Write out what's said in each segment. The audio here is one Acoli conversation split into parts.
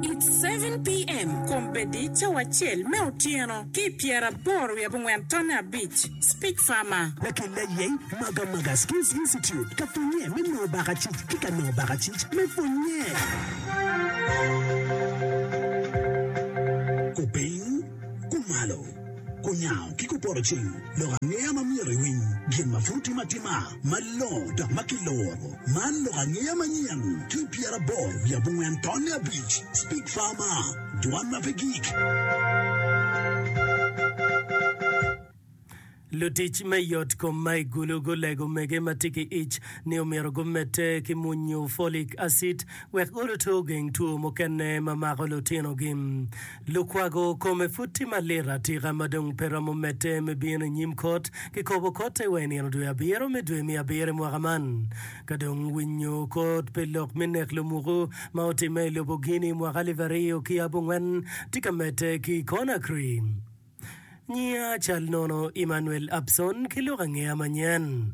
It's seven PM, Kombeddi cawa acel me otyeno ki pyeraboro wiye abongwen tonne abic, Speak Farmer. Lakil ayeny Maga Maga Skills Institute ka pwonnye me nongo bakacic ki ka nongo bakacic me pwonnye. Kupiny, kumalo, kunyango ki kupoto cing, lok angeya ma myero iwiny, gin ma pud timo atima. Malongo dok ma kiloro. Man lok angeya manyen ki pyeraboro wiye abongwen tonne abic, Speak Farmer, Dwan ma pe gik. Lutic me yotkom ma i Gulu gulego mege ma tye ki ic ni omyero gumedde ki munyu folic acid wek gurutu ogeng two mukene ma mako lutinogi. Lukwago kome pud tye malit atika ma dong pe romo medde me bino i nyim kot. Kikobo kotte wa i nino dwe abiro me dwe me abiro i mwaka man. Ka dong winyo kot pi lok me nek lumuku ma otimme i lobo Guinea i mwaka alip aryo ki yabongwen tye ka medde ki i Conakry, Nyinga cal nono Emmanuel Abson ki lok angeya manyen.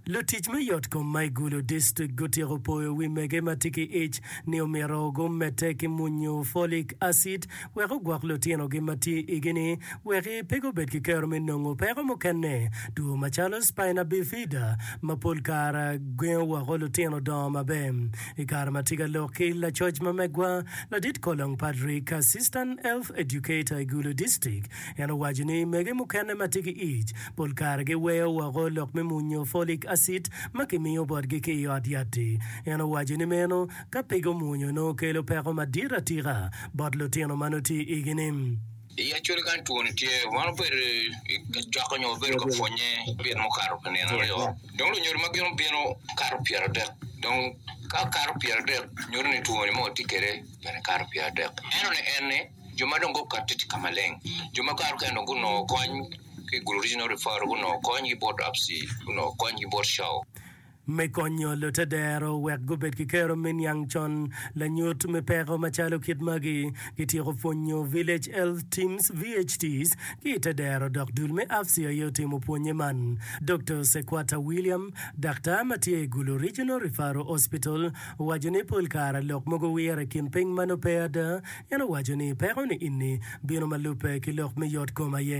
Lutic me yotkom ma i Gulu District gutyeko poyo wi mege ma tye ki ic ni omyero gumedde ki munyu folic acid wek ogwok lutinogi ma tye i igi ni wek pe gubed ki kero me nongo peko mukene two macalo spina bifida ma pol kare gengo woko lutino dongo maber I kare ma tye ka lok ki lacoc ma megwa, Ladit Kolong Patrick, Assistant Health Educator i Gulu District, en owaco ni mege mukene ma tye ki ic pol kare giweyo woko lok me munyo folic acid ma kimiyo botgi ki i ot yat-ti. En owaco ni meno ka pe gumunyo nongo kelo peko madit atika bot lutino ma nongo tye i igi-ni. I Acholi kany two-ni tye, wan obedo ka cokke nyo wabedo ka pwonnye nino mukato pa nino aryo. Dong lunyodo ma gin obino kato pyeradek. Dong ka kato pyeradek, nyuto ni two-ni ma watye kwede bene kato pyeradek. Ento ni en ni, jo ma dong gukatte tye ka maleng. Jo ma kato kene dong gunongo kony ki i Gulu Regional Referral, gunongo kony ki bot Apsi, gunongo kony ki bot Shaw. Me konyo lutedero wek gubed ki kero me niang con lanyut me peko macalo kit magi, kityeko pwonyo Village Health Teams, VHTs, ki i te dero dok dul me Afsi aye otimo pwonye man. Doktor Sequata William, daktar ma tye i Gulu Regional Referral Hospital, owaco ni pol kare lok mogo wire i kin piny ma nongo pe ada En owaco ni peko ni inni bino ma lubbe ki lok me yot kom aye.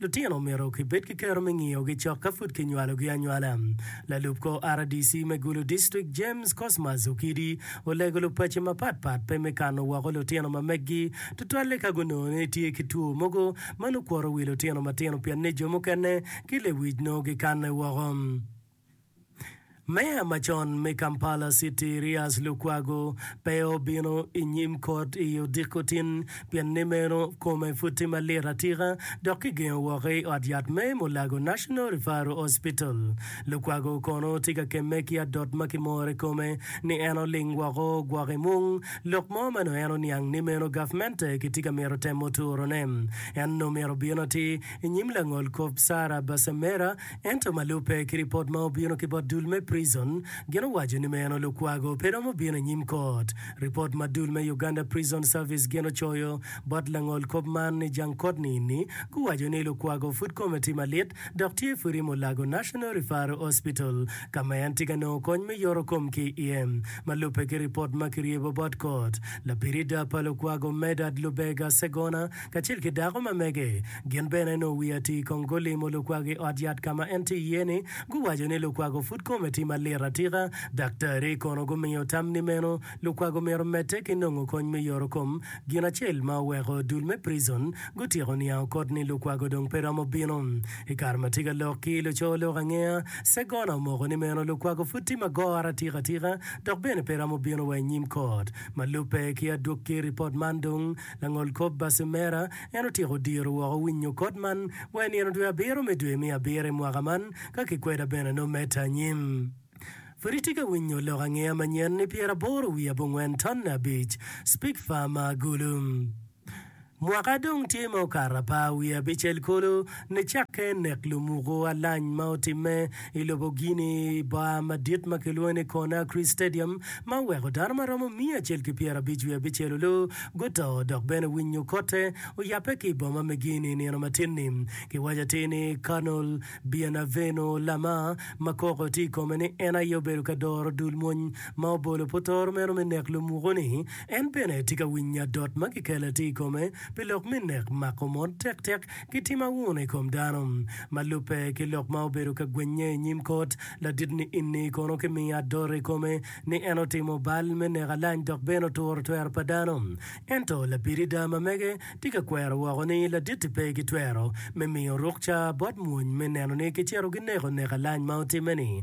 Lutino omyero kibed ki kero me ngiyogi cok ka pud kinywalogi anywala. Lalub kor RDC me Gulu District, James Cosmas Okidi, olego lupaco mapat pat pe me kano woko lutino ma meggi, tutwalle ka gunongo ni tye ki two mogo ma nukwoto wi lutino matino pienni jo mukene ki lewic nongo gikanne woko. Meya macon me Kampala City Erias Lukwago pe obino i nyim kot i odiko tin pien ni meno kome pud tye malit atika dok kigengo woko i ot yat me Mulago National Referral Hospital. Lukwago kono tye ka kemme ki adot ma kimore kome ni en oling woko ogwok i mung lok mo ma nongo en oniang ni meno gavmente kitye ka mito temo turone. En nongo myero obin atir i nyim langolkop Sarah Basemera Ento ma lubbe ki ripot ma obino ki bot dul me Prison, gin owaco ni meno Lukwago pe romo bino i nyim kot. Ripot ma dul me Uganda Prison Service gin ocoyo bot langol kop man ni jang kot niini guwaco ni Lukwago pud kome tye malit dok tye pwod i Mulago National Referral Hospital ka ma en tye ka nongo kony me yoto kom ki iye. Ma lubbe ki ripot ma kiryebo bot kot, labirida pa Lukwago Medard Lubega Ssegona kacel ki dako ma mege, Gin bene nongo wi atir kong gulimo lukwago i ot yat ka ma en tye iye-ni. Guwaco ni lukwago pud kome tye malit atika. Daktarri kono gumiyo tam ni meno lukwago myero omedde ki nongo kony me yoro kom. Gin acel ma oweko dul me prison gutyeko niang okot ni lukwago dong pe romo bino. I kare ma tye ka lok ki luco lok angeya, Segona omoko ni meno lukwago pud tye magoro atika atika dok bene pe romo bino wa i nyim kot. Ma lubbe ki adwogi ripot man dong, langol kop Bassemera, En otyeko diro woko winyo kot man wa i nino dwe abiro me dwe me abiro i mwaka man, ka kikweda bene nongo medde anyim. Pud itye ka winyo lok angeya manyen ni pyeraboro wiye abongwen tonne abic, Spigfar ma agulu. Mwaka dong tye ma okato apa wiye abicel kulu nicakke nek lumuku alany ma otimme, I lobo Guinea, i bar madit ma kilwongo ni Conakry Stadium ma oweko dano ma romo miya acel ki pyerabic wiye abicel olu guto dok bene winyo kotte oyabbe ki i boma me Guinea i nino matin-ni. Kiwaco atir ni Colonel Bienavenu Lama, ma koko tye i kome ni en aye obedo ka doro dul mwony ma obolo putoro meno me nek lumuku-ni, en bene tye ka winyo adot ma kikelle atir i kome pi lok me nek mako mon tektek. ki tim auno i kom dano. Ma lubbe ki lok ma obedo ka gwinnye i nyim kot ladit-ni enni kono kimiyo adot i kome ni en otimo bal me neko alany dok bene oturo twero pa dano. Ento labirida ma mege tye ka kwero woko ni ladit-ti pe ki twero me miyo rukca bot mwony me neno ni kicito gineko neko alany ma otimme-ni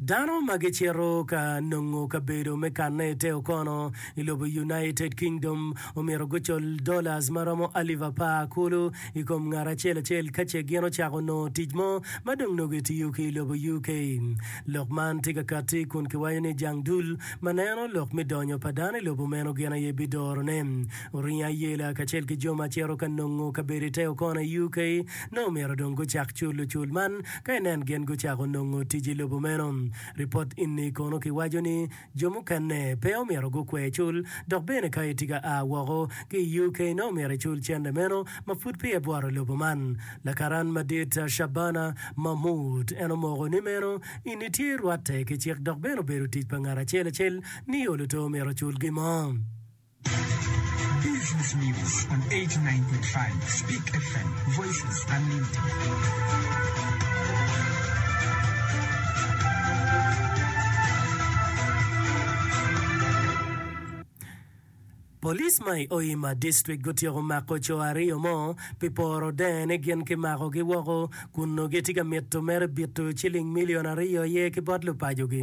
Dano ma gicito ka nongo kabedo me kanne i te okono i lobo United Kingdom omyero gucul dollars ma romo alip apar kulu i kom ngat acel acel ka ce gin ocako nongo tic mo ma dong nongo etiyo ki i lobo UK. Lok man tye ka katti kun kiwaco ni jang dul ma neno lok me donyo pa dano i lobo meno gin aye bidorone. Oringo ayela kacel ki jo ma cito ka nongo kabedo i te okono i UK nongo omyero dong gucak culo cul man Ka inen gin gucako nongo tic i lobo meno, ripot enni kono kiwaco ni jo mukene pe omyero gukwer cul dok bene ka itye ka a woko ki i UK nongo myero icul cente meno ma pud peya ibworo lobo man. Lakaran madit Shabana Mahmood en omoko ni meno enni tye rwatte ki cik dok bene obedo tic pa ngat acel acel ni oluto myero ocul gin mo. Police ma i Hoima District gutyeko mako co aryo mo pi poro denge ni gin ki mako gi woko kun onongo gitye ka mito mere bito ciling million aryo aye ki bot lupaco gi.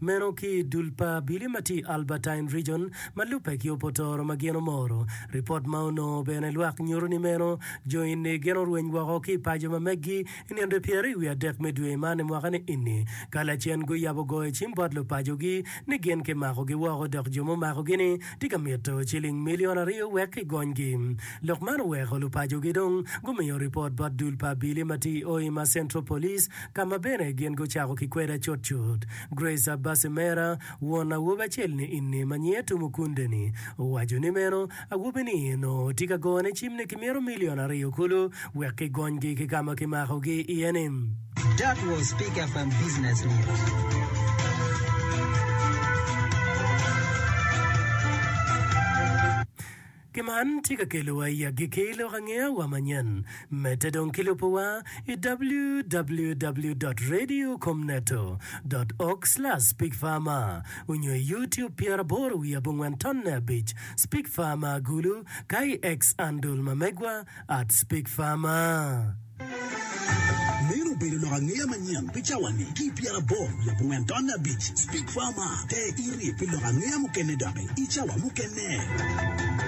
Meno ki i dul pa abili ma tye i Albertine Region ma lubbe ki Opotoro ma gin omoro. Ripot ma onongo bene lwak nyuto ni meno jo eni gin orweny woko ki i paco ma meggi i nino pyeraryo wiye adek me dwe man i mwaka ni eni ka lacen guyabo goyo cim bot lupacogi ni gin ki makogi woko dok jo mumakogi ni tye ka mito ciling milion aryo wek ki gonygi. Lok man oweko lupacogi dong gumiyo ripot bot dul pa abili ma tye i Hoima Central Police ka ma bene gin gucako ki kweda cutcut. Grace Abasi mera, won awobi acel-ni ini ma nyinge Tumukunde-ni, owaco ni meno awobi-ni onongo tye ka gone cimne ki myero milion aryo kulu wek kigonygi ki ka ma kimakogi iye-ni. That was Peak FM Business News. Ki man tye ka kelowa i agikki lok angeya wa manyen. Medde dong ki lubo wa i www dot radio kom neto dot org slash Speak Farmer onyo i youtube pyeraboro wiye abongwen tonne abic Speak Farmer agulu ka i X andol ma megwa at Speak Farmer. Meno obedo lok angeya manyen pi cawa ni ki i pyeraboro wiye abongwen tonne abic Speak Farmer te irip pi lok angeya mukene doki i cawa mukene.